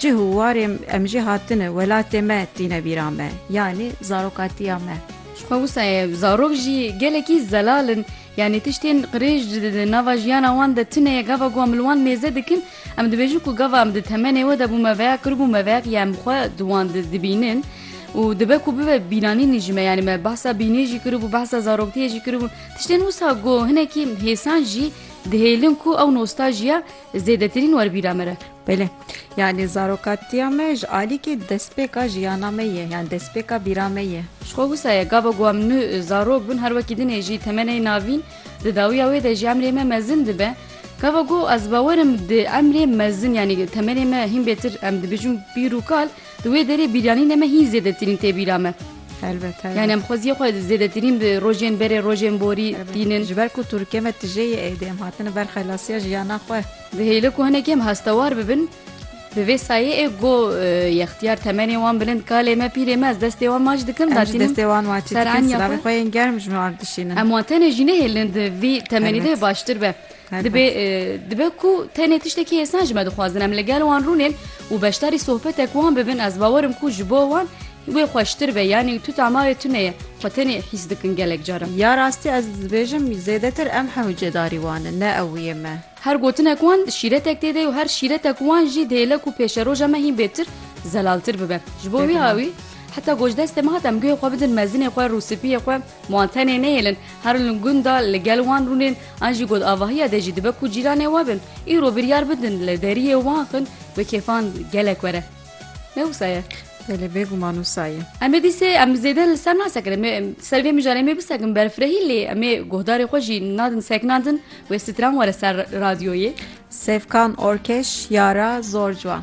Cih û warê em jî hatine welatê me tîne bîra me, yanî zarokatiya me. Ji xwe wisa ye zarok jî gelekî zelal in, yanî tiştên qirêj di nava jiyana wan de tune ye, gava ku em li wan mêze dikin em dibêjin ku gava em di temenê we de bûme veya kiribûme veya ku ya em xwe di wan de dibînin û dibe ku bibe bîranînî ji me, yanî me behsa bîniyê jî kiribû, behsa zaroktiyê jî kiribû, tiştên wisa ku hinekî hêsan jî dihêlin ku ew nostaljiya. Zêdetirîn werbîra me re. Belê. Yanî zarokatiya me ji alîkê destpêka jiyana me ye, yan destpêka bîra me ye. Ji xwe wisa ye, gava ku em nu zarok bûn, her wekî dinê jî temenê navîn, di dawiya wê de jî emrê me mezin dibe. Gava ku ez bawer im di emrê mezin yanî temenê me hîn bêtir em dibêjin pîr û kal, Di wê derê bîryanînê me hîn zêdetirîn tê bîra me. Helbet, helbet. Yani em xweziyê xwe zêdetirîn bi rojên berê, rojên borî tînin. Ji ber ku Tirkiye me tije yê êdî em hatine ber xelasiya jiyana xwe. Dihêle ku hinekî em hestewar bibin bi vê sayê ê go yextiyar temenê wan bilind kalê me, pîrê me ez destê wan maç dikim da tînim ser enya xwe. Em jî destê wan maçî dikin silavê xwe yên germ ji me ard dişînin. Em wan tenê jî nehêlin di vî temenî de baştir be. Dibê dibe ku tenê tiştekî hêsan ji me dixwazin em li gel wan rûnên û beşdarî sohbetek wan bibin ez bawer im ku ji bo wan wê xweştir be yanî tu tamarê tune ye xwe tenê hîs dikin gelek caran. Ya rastî ez dibêjim zêdetir em hew cêdarî wan in ne ew yê me. Her gotinek wan şîretek tê de û her şîretek wan jî dihêle ku pêşeroja me hîn bêtir zelaltir bibe. Ji bo wî awî heta gojdestê me hat em guhê xwe bidin mezinê xwe rûspiyê xwe. Ma an tenê nehêlin, herin li gunda li gel wan rûnên, an jî got avahiya de jî dibe ku cîranê we bin. Îro biryar bidin li deriyê wan xin bi kêfan gelek were. Ne wisa ye? Belê, bêguman wisa ye. Em ê dîsê em zêde li ser nasekirin. Me ser vê mijarê em ê bisekin berfirehî lê em ê guhdarê xwe jî nadin sekinan din wê stran were ser radyoyê. Sevkan Orkeş, Yara, zor ciwan.